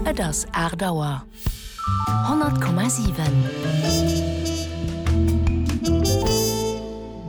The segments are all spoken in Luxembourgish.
Et ass aacht Auer. 100,7.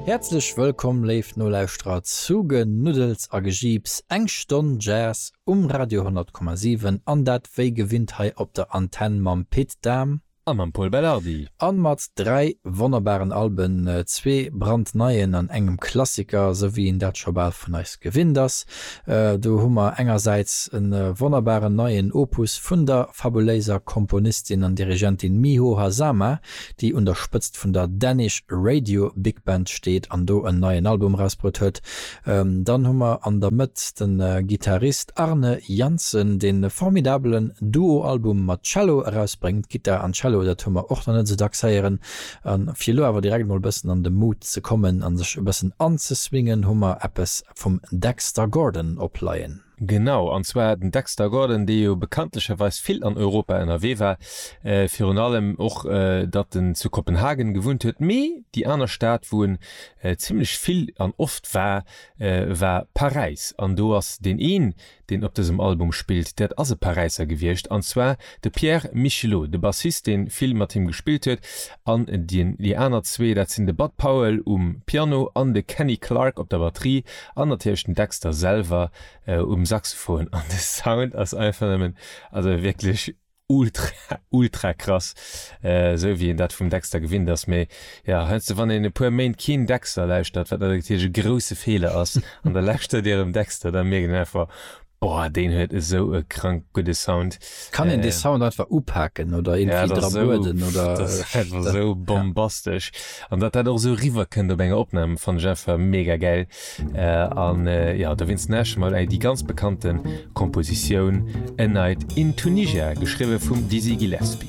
Häerzlech wëllkomm, léif Nolauschterer, zu Genuddels a Gejiips, eng Stonn Jazz um Radio 100,7, an dat wéi gewinnt hei op der Antenn mam Pit Dahm. A mam Pol Belardi. A mat dräi wonnerbaren Alben, zwee brandneien an engem Klassiker, esou wéi een dat scho bal vun eis gewinnt ass. Do hu mer engersäits e wonnerbaren neien Opus vun der fabuléiser Komponistin an Dirigentin Miho Hazama, déi un der Spëtzt vun der Danish Radio Big Band steet an do en neien Album erausbruet huet, Dann hu mer an der Mëtt de Gittarist Arne Janssen, deen e formidabelen Duo-Album mat Cello erausbréngt. Gittar an Cello, dat hu mer och nach net esou dacks héieren. A fir elo awer direkt mol e bëssen an de Mood ze kommen a sech e bëssen anzeswingen, hu mer eppes vum Dexter Gordon opleien. Genau, an zwar den Dexter Gordon, dee jo bekanntlecherweis vill an Europa ënnerwee war, virun allem och datt en zu Kopenhagen gewunnt huet, mee déi aner Stad wou en zimmlech vill an oft war, war Paräis. An do ass deen een, deen op dësem Album spillt, dat ass e Paräisser gewiescht, an zwar de Pierre Michelot, de Bassist, dee vill mat him gespillt huet. An déi aner zwee, dat sinn de Bud Powell um Piano an de Kenny Clarke op der Batterie an natierlech den Dexter selwer um Saxophon. An de Sound ass einfach nëmmen, also wierklech ultra, ultra krass, esou wéi een dat vum Dexter gewinnt ass. Mee jo, heiansdo, wann een e puer Méint keen Dexter lauschtert, wat natierlech e grousse Feeler ass, an da lauschtert ee erëm Dexter, da mierkt een einfach, Boah, deen huet esou e krank gudde Sound. Kann een dee Sound einfach upaken oder irgendwie ja, dra bueden? Oder, das ist einfach so bombastisch. Ja. An dat dat och so riwwerkënnt op enger Opnam van Jeffer mega geil. Äh, an äh, ja, da winst näsche mal ey, die ganz bekannten Kompositioun A Night in Tunisia, geschriwe vum Dizzy Gillespie.